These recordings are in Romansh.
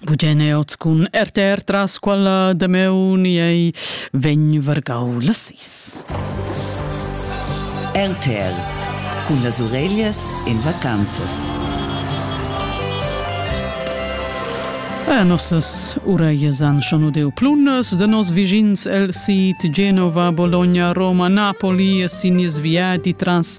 Bugene oz cun RTR tras quella de meu ni ei vegn vargau la sis. RTL cun las ureglias in vacanzas. A nossas ureias an schon udeu plunas de nos vigins el sit Genova, Bologna, Roma, Napoli e sin nies viadi trans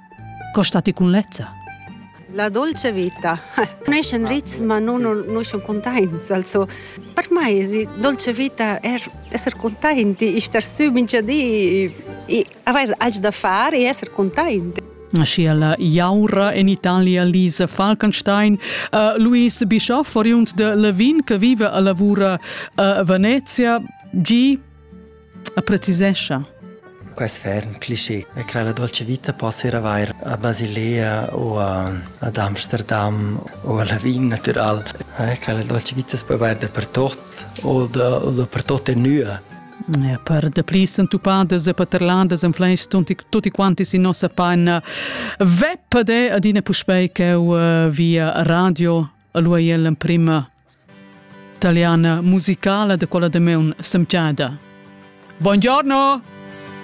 Co sta ti cun lezza? La dolce vita. Cresce in ritmo, ma non conosce containts. Also, per me die dolce vita è essere contenti, star su mincha di, avere algo da fare e essere contenti. Sia la Jaura in Italia Lisa Falkenstein, uh, Luis Bischoff, oriund de Levin, che vive a lavora a Venezia, gi A precisescha. Quest ferm cliché è che la dolce vita possa ir avair a Basilea o ad Amsterdam o a Lavin natural, eh, che la dolce vita si può avair dappertut o, da, o dappertut e nua. Ja, per de pli sentupadas e paterladas en fleis tutti, tutti quanti si nossa panna veppa de adina puspei che uh, via radio a lui l'emprima Taliana musicala da quella damaun semchada. Buongiorno!